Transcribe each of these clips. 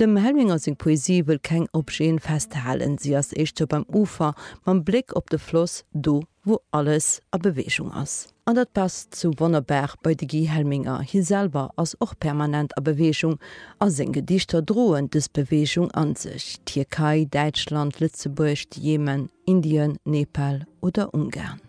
Dem Helminger seng Poesie wëll keng Objeten festhalen, si ass éischter beim Ufer, mam Bléck op de Floss, do wou alles a Beweegung ass. An dat passt sou wonnerbar bei de Guy Helminger, hie selwer ass och permanent a Beweegung a seng Gedichter droen dës Beweegung an sech, Tierkei, Däitschland, Lëtzebuerg, de Jemen, Indien, Nepal oder Ungarn.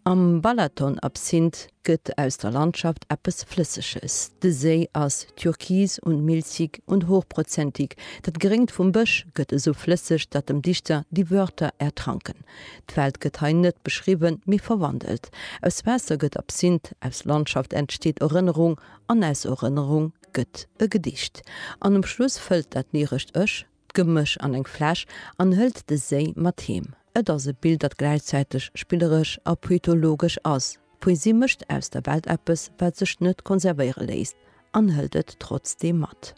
Am Balaton-Absinth gëtt aus der Landschaft eppes Flësseges. De Séi ass türkis und milchig und hochprozentig, dat Gréngt vum Bësch gëtt esou flësseg, datt dem Dichter die Wörter ertranken. D'Welt gëtt hei net beschriwwen, mee verwandelt. Aus Waasser gëtt Absinth, aus Landschaft entsteet Erënnerung an aus Erënnerung gëtt e Gedicht. An um Schluss fëllt dat lyrescht Ech d'Gemësch an eng Fläsch an hëlt de Séi mat heem. Et ass e Bild, dat gläichzäiteg spilleresch a poetologesch ass. D'Poesie mécht aus der Welt eppes, wat sech net konservéiere léisst, an hëlt et trotzdeem mat.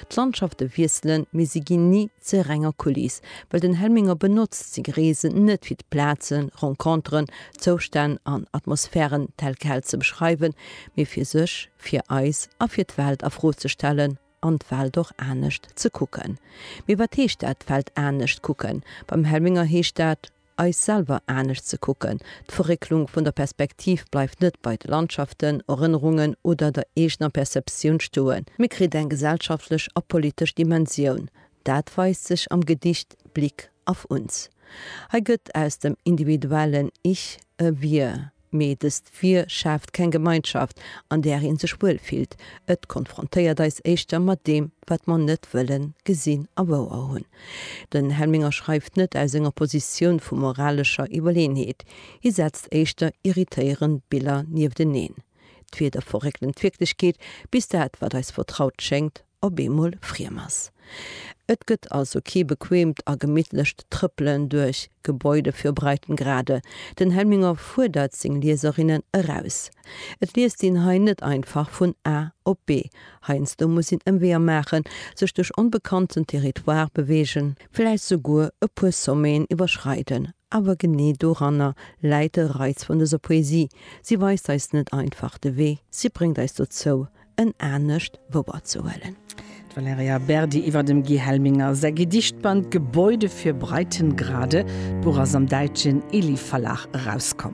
D'Landschafte wiesselen, mee si ginn ni zur renger Kuliss, well den Helminger benotzt seng Reesen net fir d'Plazen, Renconteren, Zoustänn an Atmosphären tel quel ze beschreiwen, mee fir sech, fir eis a fir d'Welt a Fro ze stellen. an d'Welt och anescht ze kucken. Mee wat heescht dat, d'Welt anescht kucken? Beim Helminger heescht dat, eis selwer anescht ze kucken. D'Verrécklung vun der Perspektiv bleift net bei de Landschaften, Erënnerungen oder der eegener Perceptioun stoen, mee kritt eng gesellschaftlech a politesch Dimensioun. Dat weist sech am Gedicht Blick auf uns. Hei gëtt aus dem individuellen Ich e Wir, Mee dëst Vir schaaft keng Gemeinschaft, an där ee sech wuel fillt. Et konfrontéiert eis éischter mat deem, wat mer net wëllen gesinn a wouer hunn. Den Helminger schreift net aus enger Positioun vu moralescher Iwwerleenheet. Hie setzt éischter irritéierend Biller niefteneen. D'Wieder verréckelen d'Wierklechkeet, bis dat, wat eis vertraut schéngt, op eemol friem ass. Et gëtt also kee bequeemt a gemittlecht Trëppelen duerch Gebäude fir Breitengrade. Den Helminger fuerdert seng Lieserinnen eraus. Et liest een hei net einfach vun A op B. Heiansdo muss een Ëmweeër maachen, sech duerch onbekannten Territoire beweegen, vläicht souguer e puer Sommeten iwwerschreiden, awer genee doranner läit de Reiz vun dëser Poesie, si weist eis net einfach de Wee, si bréngt eis dozou en anescht Wouer ze huelen. D'Valerija Berdi iwwer dem Guy Helminger säi Gedichtband Gebäude für Breitengrade. D'Buch ass am däitschen Ely-Verlag erauskomm.